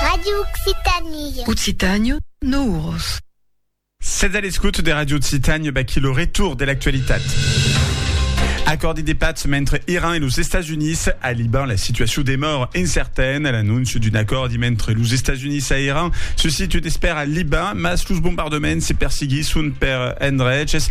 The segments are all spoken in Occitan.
Radio Occitanie. Occitània, no uros. Sètz a l'escouta de Radio Occitània, baquí lo retour de l'actualitat. Acòrdi de patz mentre Iran e los Estats Units. A Liban, la situacion demòra incertaine. L'anóncia d'un acòrdi mentre los Estats Units a Iran se situ d'espèr a Liban, mas los bombardements se persiguisson per endreches.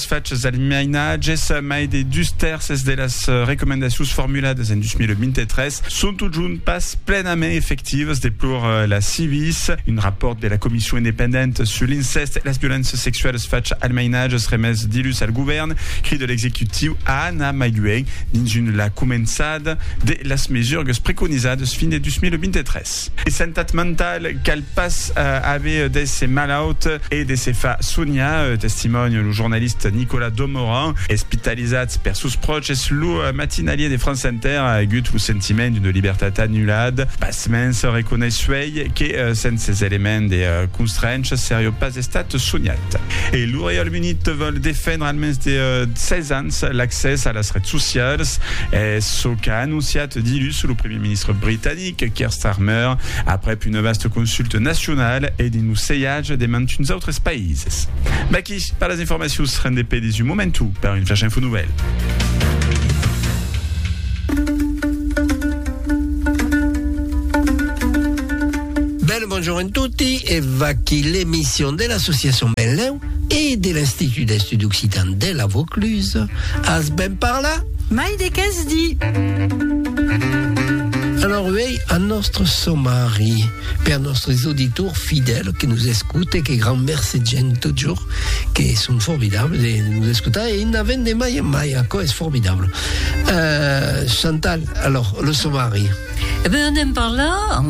Es fachas del mainatge, se mai de dus tèrces de las recomendacions formuladas en 2023 son totjorn pas plenament efectivas, deplor la Civis. Un rapòrt de la Comission independenta sus l'incèst e las violéncias sexualas facha al mainatge remés dilhus al govèrn crida l'executiu a anar mai luènh dins un la començada de las mesurgas preconizadas fin de 2023. De santat mentala, cal Pas aver d'èsser malaut e de se far soniar, testimònia lo jornalista Nicolas Domoran, espitalizat per sos pròches. Lo matinalier de France Inter a agut lo sentiment d'una libertat anullat. Pasmens, reconeissuèi que sens ses elements de constrencha seriá pas estat soniat. E lo Reialme Unit vòl defendre al mens de 16 ans l'accès a las rets socialas. Es çò qu'a anonciat dilhus lo primièr ministre britanic. Eric Keir Starmer, aprèp una vasta consulta nacionala e dins lo sejatge de mantuns autres païses. Vaquí per las informacions, rendé pedis un momentu per un flash info novèl. Bonjour en tutti e vaquí l'emission de l'associacion Benlèu E de l'Institut d'Estuds Occitans de la Vaucluse as ben parlat? Mai de qu'es dit! Alòr uèi a nòstre somari per nòstres auditors fidèls que nos escoute, que grand mercé gènt totjorn que son formidables de nos escotar e i n'avèn de mai en mai, aquò es formidable. Chantal, alòr lo somari. E ben anem parlar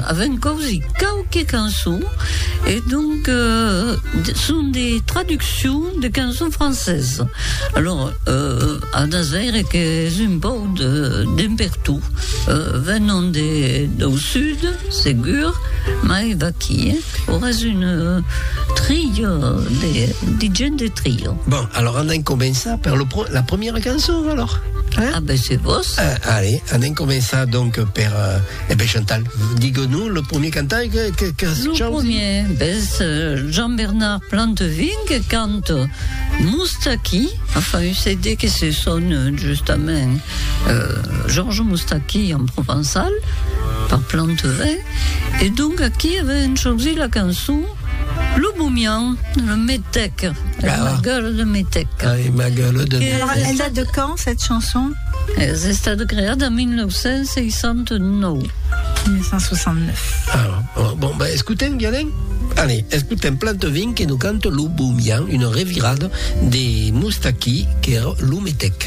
avèn causi quauque cançon e donc son de traduccion de cançon francesa alors anas veire qu'es un pòu d'un per tot venon dau sud segur mai vaquí. Auras un trilho de de gent de trilho. Bon, alors anem començar per lo pro la premiera cançon alors. Hein? Ah ben se vos. Ah, allez, anem començar donc per euh, eh ben Chantal, digue-nous le premier cantar que que que Lo chant- premier, ben ce Jean-Bernard Plantevin que cante Moustaki, enfin un CD que se sonne justament euh, Georges Moustaki en provençal par Plantevin. E donc aquí avèm chosit la cançon Lo Bomian, le Metec, ah. ma gueule de Metec. Ah, et ma gueule de Metec. Alors, elle date de quand, cette chanson Es estat creat en 1969. 1969. Ah, bon, bon ben, escoutèm, Guianen? Allez, escutem Plantovin que nous cante Lo Bomian, une revirada de Moustaki, que era Lo Metec.